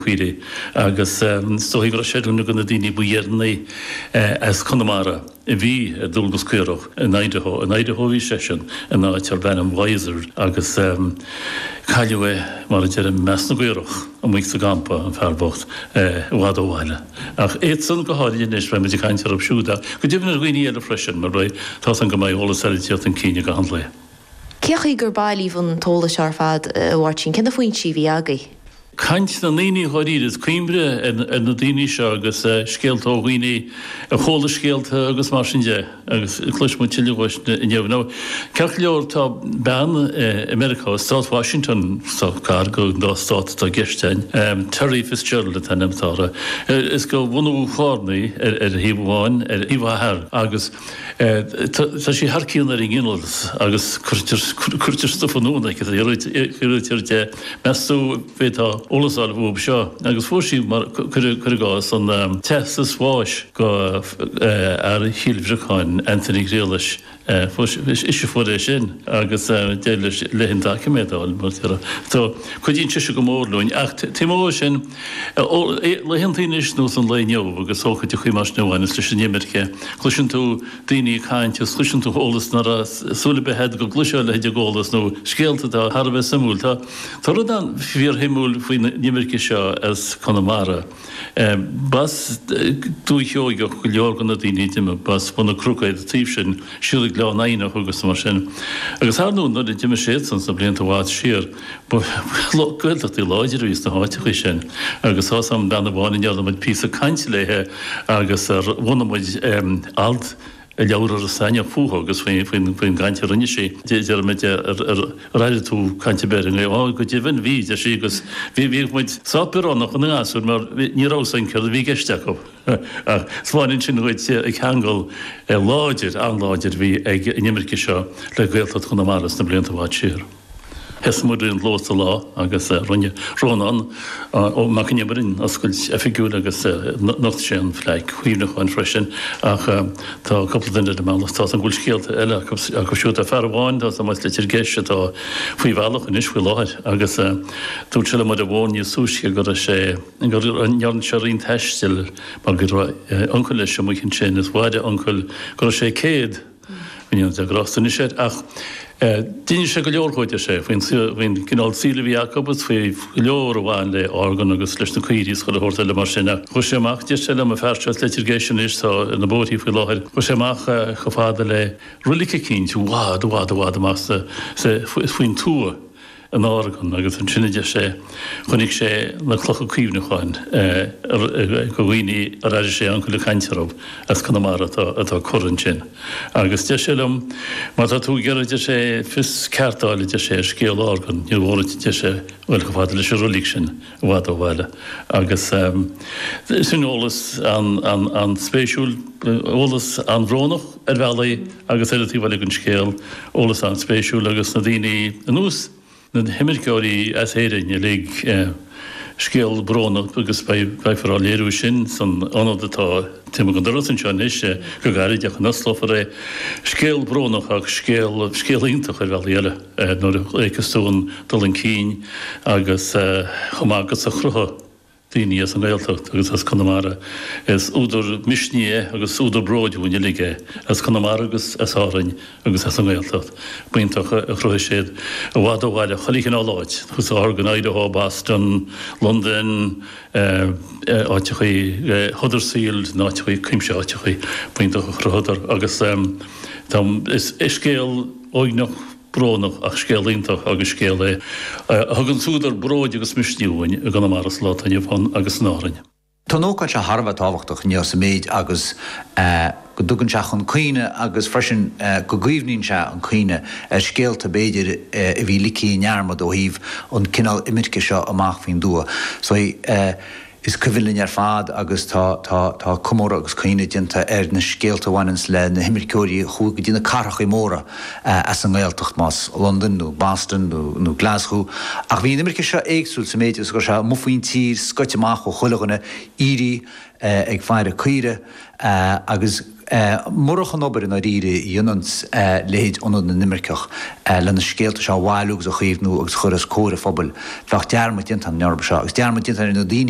Guaire, agus is dóigh go raibh sé ar dhuine de na daoine ba dheireanaí as Conamara a bhí ar dualgas caorach in Idaho. In Idaho a bhí seisean, in áit darb ainm Weiser, agus cailleadh é, mar a deirim, i measc na gcaorach, amuigh sa gcampa, an fear bocht, i bhfad ó bhaile. Ach iadsan go háirithe, anois, beidh muid ag caint orthu siúd, ach go deimhin ar dhaoine eile freisin, arae tá a fhios a'm go mbeidh eolas eile ag teacht chun cinn i gcaitheamh an lae. Cén chaoi gur bailíodh an t-eolas seo ar fad a Mháirtín, cé na foinsí a bhí agaibh? Caint na ndaoine dháiríre is cuimhne ar na daoine seo agus scéalta ó dhaoine a chuala scéalta agus mar sin de agus cloisfidh muid tuilleadh uait inniu. Nó ceart go leor tá bean i Meiriceá, i Stát Washington, sách gar go dá stát atá i gceist a'inn, Terri Fitzgerald an t-ainm atá uirthi is go bhunadh Charna í ar thaobh amháin ar thaobh a hathar agus Tá sí thar cionn ar an nginealas agus cuirtear stuif anonn aici taobh thiar de. Meas tú bhféadfá eolas a fháil faoi seo? Agus fuair sí, cuir i gcás, an teastas báis go fhear Chill Bhriocáin, Anthony Ghriallais, ise fuair é sin agus d'éirigh léi an doiciméad a fháil mar a déarfá. So cuidíonn sise go mór linn ach taobh amuigh de sin, Ó laethanta anois nós an lae inniu agus ócáidí chuí mar seo anois leis an imirce, cloiseann tú daoine ag caint agus cloiseann tú eolas nach raibh súil ar bith agat go gcloisfeá a leithéid go eolas nó scéalta atá thar a bheith suimiúil. Tá rud ann fíorshuimiúil faoin imirce seo as Conamara. B'as Dúiche Sheoigheach go leor de na daoine a d'imigh, b'as Bun na gCnoc ar an taobh sin siar go Gleann Eidhneach agus mar sin agus ar ndóigh nuair a d'imigh siadsan sna blianta i bhfad siar, Ba Gaeltachtaí láidre a bhí sna háiteachaí sin agus tá a fhios a'm bean amháin a ndearna muid píosa cainte léithe agus ar bhunaigh muid alt i leabhar Iorras Aithneach fúithi agus faoin gcaint a rinne sí. Deir muid Ar airigh tú caint an Bhéarla inné? Á go deimhin bhí, a deir sí, agus bhíodh muid sách bioránach ina ngasúir mar ní raibh a fhios againn céard a bhí i gceist acu. Ach spáineann sin dhuit an ceangal láidir, an-láidir a bhí ag an imirce seo le Gaeltacht Chonamara sna blianta i bhfad siar. Thosaigh muid go luath sa lá agus rinne Rónán Mac Con Iomaire an oscailt oifigiúil agus nocht sé an phlaic chuimhneacháin freisin ach tá cúpla duine ar a mbealach, tá a fhios a'm go bhfuil scéalta eile acu siúd, tá fear amháin atá sa mbus, Leitir Geis, atá faoi bhealach anois faoi láthair agus dúirt sé liom ar an bhfón níos túisce go raibh sé, gur ndearna sé roinnt taistil mar go raibh uncail leis amuigh ansin is mhair a uncail go raibh sé céad. Go ndéana Dia grásta anois air, ach d'inis sé go leor dhó, a deir sé, faoin gcineál saoil a bhí acu agus faoi go leor a bhain le hOregon agus leis na caoirigh is chuile shórt eile mar sin. Chuaigh sé amach, deir sé liom, an fear seo as Leitir Geis anois, atá ar na bóithrí faoi láthair, chuaigh sé amach chomh fada le roilig eicínt i bhfad, i bhfad, i bhfad amach faoin tuath. in Oregon agus ansin, a deir sé, chonaic sé na clocha cuimhneacháin de dhaoine ar airigh sé a uncail ag caint orthu as Conamara atá curtha ansin. Agus deir sé liom, 'má tá tú ag iarraidh, a deir sé, 'fios ceart a fháil, a deir sé, 'ar scéal Oregon, níor mhór duit, a deir sé, 'dul chomh fada leis an reilig sin, i bhfad ó bhaile. Agus sin eolas an-spéisiúil, eolas an-bhrónach ar bhealach agus ar an taobh eile den scéal, eolas an-spéisiúil agus na daoine ar nós, na himirceoirí as Éirinn uilig, scéal brónach agus beifear dhá léiriú sin san ionad atá taobh amuigh den doras anseo anois, go gairid nuair a osclófar é. Scéal brónach ach scéal iontach ar bhealaí eile. nuair a fhéachas tú an dul chun cinn agus chomh maith agus a chruthaigh daoine as an nGaeltacht agus as Conamara. Is údar misnigh é agus údar bróid dhúinn uilig é as Conamara agus as Árainn agus as an nGaeltacht. B'iontach a chruthaigh siad i bhfad ó bhaile chuile chineál áit, Oregon, Idaho, Boston, Londain, áiteacha Huddersfield, na háiteacha, cuimse áiteacha b'iontach a chruthadar agus tá, is scéal. Uaigneach, brónach, ach scéal iontach agus scéal é a thugann údar bróid agus misnigh dhúinn i gConamara sa lá atá inniu ann agus in Árainn. Tá an ócáid seo thar a bheith tábhachtach inniu sa méid is go dtugann sé chun cuimhne agus freisin go gcaomhnaíonn sé an cuimhne ar scéalta, b'fhéidir, a bhí ligthe i ndearmad ó thaobh an cineál imirce seo amach faoin dtuath. Is cuimhin linn ar fad, agus tá comóradh agus caoineadh déanta ar na scéalta a bhaineanns le na himirceoirí a chuaigh go dtí na cathrachaí móra as an nGaeltacht, más Londain nó Boston nó Glaschú. Ach bhí an imirce seo éagsúil sa méid is gur sé amuigh faoin tír, scoite amach ó chuile dhuine, aoirí ag faire caoirigh agus murach an obair i ndáiríre a dhéananns leithéid Ionad na nImirceach le na scéalta seo a bhailiú agus a chaomhnú agus a chur os comhair an phobail, bheadh dearmad déanta ar an oidhreacht seo agus dearmad déanta ar na daoine